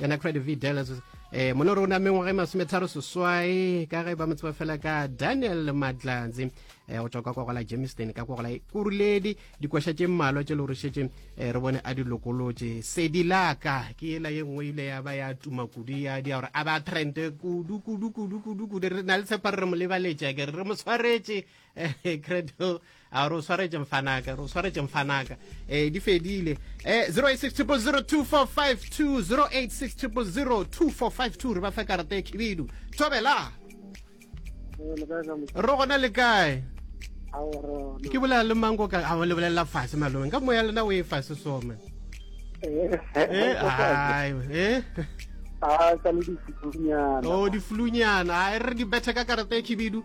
yona credit v dallas eh mona rona mengwaga e masometharo seswai ka ge ba mo tseba fela ka daniel matlatsi eh go tswa kwa kogola jameson ka kogola kuruledi dikwaša tše mmalwa tše le gore šetše eh, re bone a di lokolotše sedi laka ke ela ye nngwe ile ya ba ya tuma kudu ya dia gore a ba trente kudu kudu kudu kudu kudu re na le tshepa re re mo lebaletša ke re re mo tshwaretše eh, credo a re o swaretše mfanaka re o swaretše mfanaka eh di fedile eh 0860002452 0860002452 re ba fe karata e khibidu thobela ro gona le kae ke bolela le mango ka a le bolela fase malome ka moya lena o e fase some eh ai eh a ka le difulunyana o difulunyana a re di bethe ka karata e khibidu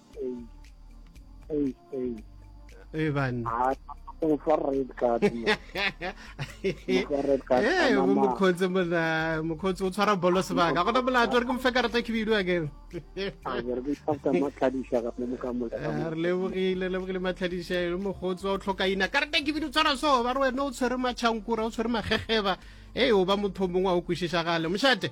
e bane mokgotsi mona mokgotsi o tshwara bolo sebaka gona molato re ke mofe karata ke bidu akere re lebogile lebogile matlhadišelo mokgotsi wa o tlhokaina karata ke bidu tshwara so ba re wena o tshwere matšhankura o tshwere magegeba e o ba motho mongwe wa o kwešišagale mošate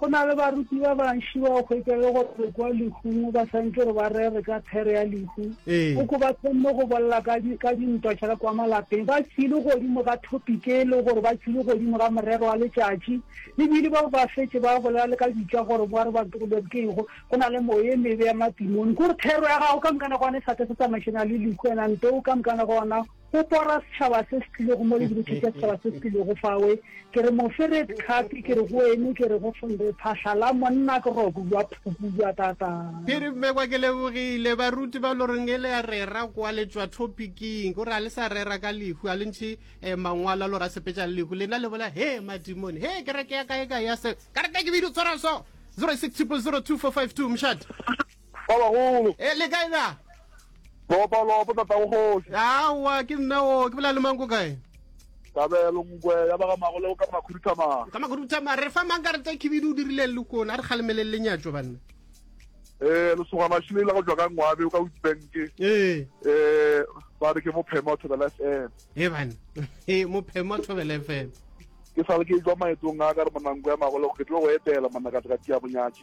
Go na le baruti ba bantši ba o hwetša le gore re kwa lehung ba swantse gore ba rere ka phere ya lehu. O ko ba kgonne go bolela ka dintwa tša ka kwa malapeng. Ba tšwile godimo ga topic e le gore ba tšwile godimo ga morero wa letšatši. Ebile ba ba fetše ba bolela le ka bitša gore ba re ba tlogelwe ke eng go na le moya e mebe ya matimoni. Ke gore thero ya gago ka moka nako ona e sa ka se tsamaišana le lehu and ante o ka moka nako ona go pora setšhaba se se tlilego mo le ke botšhitša setšhaba se se tlilego fawe ke re moferet khapi ke re go ene ke re go fondre phahla la monna ke roku jwa phuku jwa tata ke re mmekwa ke lebogile baruti ba lo reng e le ya rera kwa le tswa topiking o re a le sa rera ka lehu a le ntšhe eh, mangwalo a lo ra sepetša le lehu lena le bola he madimone he kereke ya kae kae ya se karata ke bidi o tshwara so 06 002 452 mšate Ba bagolo. E, le kae na? Lopa, lopa, tatago kgoši. Aowa, ke nna o, ke bolela le mang ko kae? Kabelo nkwe ya ba ga magole o ka makhuduthamang. Ka makhuduthamang, re fa mang ka reta khibidu o dirileng le kone, a re kgalemeleng le nyatšo banna. Eh, lesogana šile la go tšwa ka ngwabe o ka o dibanke. Eh. Eh, ba re ke mophema wa thobela FM. Eh bana. Eh, mophema wa thobela FM. Ke sale ke e jwa maetong a ka re monanko ya magole go ke tlo go etela manakateka tia bonyatši.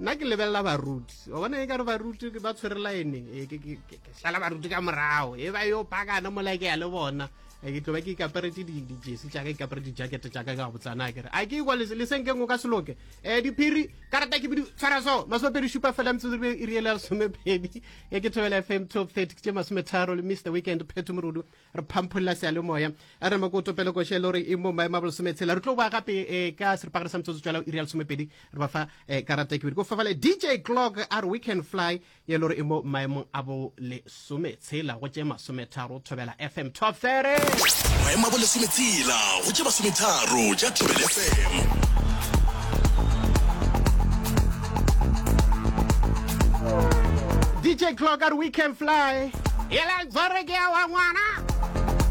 nna ke lebelela baruti wa bona e ka re baruti ba tshwere laene ee, ke sala baruti ka morago e ba yo pakana mola ke ya le bona ee, ke tlo ba ke ikaperetse dijesi jaaka ikapere dijakete jaaka ka botsana kere a ke ikwa lesenkeng o ka seloke um eh, diphiri karata ke bidi tshwara so masomepedi šupa fela metsotso e riele ya lesomepedi e ke thobela fm top thirty ke tše masometharo le mr weekend pheto morudu re phampholla sealemoya a re mako topele koše le gore e mo maemo a bolesometshela re tlo boa gape um ka seripagare sa metsotso tswala iri ya lesomepedi re ba fa um karata ke bedi ko fafale dj clock a re we can fly ye le gore e mo maemong a bolesometshela go tše masometharo thobela fm top 30 maemo a bolesometshela go tše masometharo tša thobela fm DJ Clocker, we can fly. Yela gore ke ya wa ngwana.